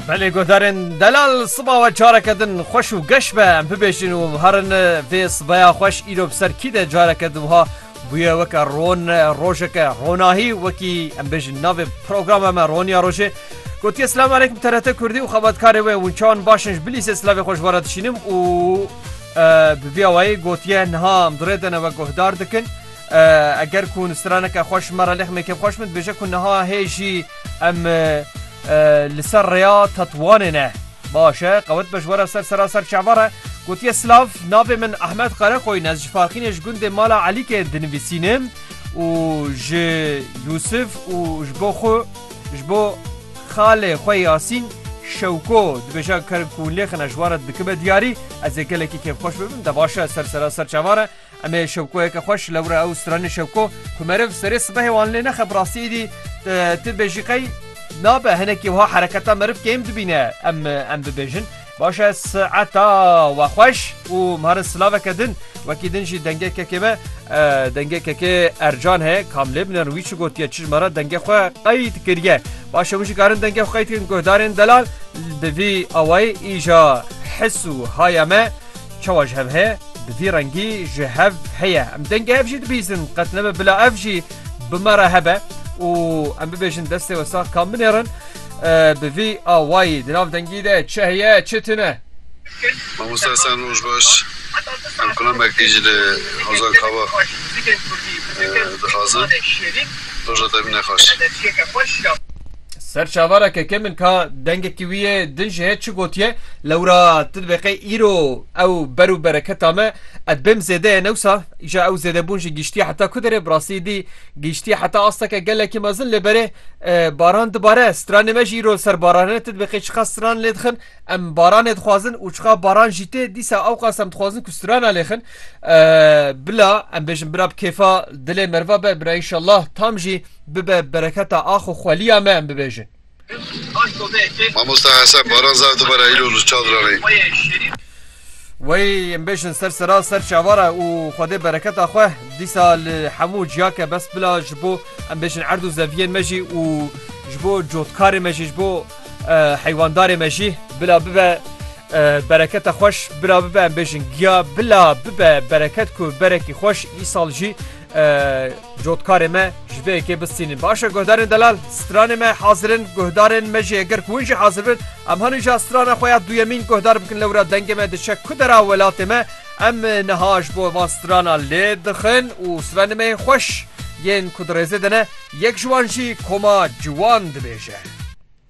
Belê guhdarên delal siba we careke din xweş û geş be em bibêjin û herin vê sibeya xweş îro bi ser kî de careke din wiha bûye weke ron rojeke ronahî wekî em bêjin navê programa me roniya rojê gotiye silam aleykum TRT Kurdî û xebatkarê wê winçan başin ji bilîsê silavê xweş were dişînim û bi vîya wayê gotiye niha em durêdene we guhdar dikin. Eger ku straneke xwe ji me re lêxmê kêm xweş min dibêje ku niha hê jî em li ser rêya Tetwanê ne. Baş e, qewet be ji were ser sera ser çava re. Gotiye silav, navê min Ahmed Qerekoyîn ez ji Farxînê ji gundê Mala Elîkê dinivîsînim û ji Yûsif û ji bo xwe ji bo xalê xwe Yasîn Şewko dibêje ker ku lêxine ji wan re dikibe diyarî. Ez ê gelekî kêmxweş bibim de baş e ser sera ser çava re. Em ê şewkoyeke xweş ji lewre ew stranê şewko ku meriv serê sibehê wan lê nexe bi rastî êdî tu bêjî qey nabe hinekî wiha hereketa meriv kêm dibîne em em bibêjin baş e saeta we xweş û mare silaveke din wekî din jî dengê kekê me dengê kekê ercan he kamlê bine wî çi gotiye çi mara dengê xwe qey dikiriye baş e jî karin dengê xwe qey dikin guhdarên delal di vî awayê îja his û haya me Çawa ji hev heye? Bi vî rengî ji hev heye. Em dengê hev jî dibîzin. Qet nebe bila ev jî bi me re hebe û em bibêjin destê we sax ka binêrin. Bi vî awayî di nav dengî de çi heye, çi tune? Mamosta Esen roj baş. Em qulamek ji li Hozar Kava dixwazin. Roja te bine xweş. Ser çavara keke min ka dengekî wî yê din ji hê çi gotiye lewra tu dibê qey îro ew ber û bereketa me ez bêm zêde ye newsa îja ew zêdebûn jî gîştiye heta ku derê bi rastî dî gîştiye heta asteke gelekî mezin lê berê baran dibare stranê me jî îro ser barane tu dibê qey çiqas stran lê dixin em baranê dixwazin û çiqa baran jî tê dîsa ew qas em dixwazin ku strana lê xin bila em bêjin bira bi kêfa dilê merva be bira inşallah tam jî Bibe bereketa ax û xweliya me em bibêjin. Mamosta Hesen baran zaf dibare îro li çadranê. Wey em bêjin ser sera ser çavara û Xwedê bereketa xwe dîsa li hemû ciya ke bes bila ji bo em bêjin erd û zeviyên me jî û ji bo cotkarê me jî ji bo heywandarê me jî bila bibe bereketa xweş bila bibe em bêjin giya bila bibe bereket ku berekî xweş îsal jî Cotkarê me ji vê yekê bistînin. Baş e guhdarên delal stranê me hazirin guhdarên me jê gir hûn jî hazir bin em hanî ja strana xwe ya duyemîn guhdar bikin lewra dengê me diçe ku dera welatê me em niha ji bo van strana lê dixin û stranê me xweş yên ku di rêzê de ne yek ji wan jî koma ciwan dibêje.